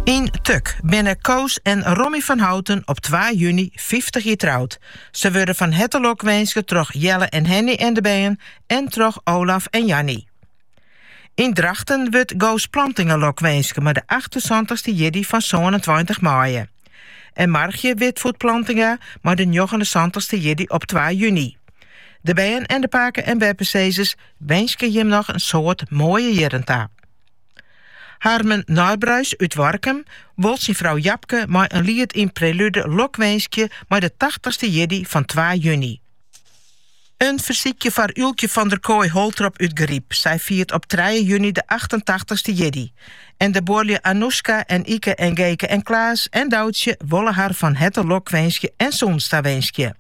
Yn Tuk binne Koos en Rommy van Houten op twa juny fyftich jier troud. Se wurde fan herte lokwinske troch Jelle en Henny en de bern en troch Olaf en Janny. Yn Drachten wurdt Goos Plantinga lokwinske mei de achtensantichste jierdei fan sânentweintich maaie. En Margje Witvoet Plantinga mei de njoggenensantichste jierdei op twa juny. De bern en de pake- en beppesizzers winskje jim noch in soad moaie jierren ta. Harmen Nijbruis út Warkum wol syn frou Japke mei in liet yn prelude lokwinskje mei de tachtichste jierdei fan twa juny. In fersykje foar Ylkje van der Kooi-Holtrop út De Gryp, sy fiert op trije juny de achtentachtichste jierdei en de buorlju Anouska en Ike en Geke en Klaas en Doutsje wolle har fan herte lokwinskje en sûnens tawinskje.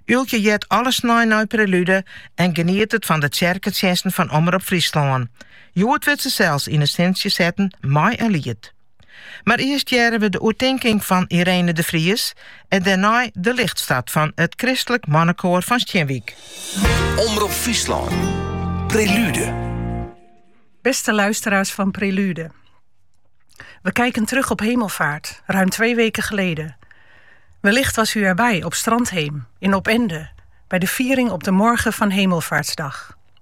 Ylkje heart alle snein nei prelude en genietet fan de tsjerketsjinsten fan Omrop Fryslân. Hjoed wurdt se sels yn it sintsje setten mei in liet. Mar earst hearre we de oertinking fan Irene de Vries en dêrnei De Lichtstad fan it Christelijk Mannekoar fan Stjinwyk. Omrop Fryslân, Prelude. Beste luisteraars van Prelude. We kijken terug op Hemelvaart, ruim twee weken geleden. Wellicht was u erbij op Strandheem, in Opende, bij de viering op de morgen van Hemelvaartsdag.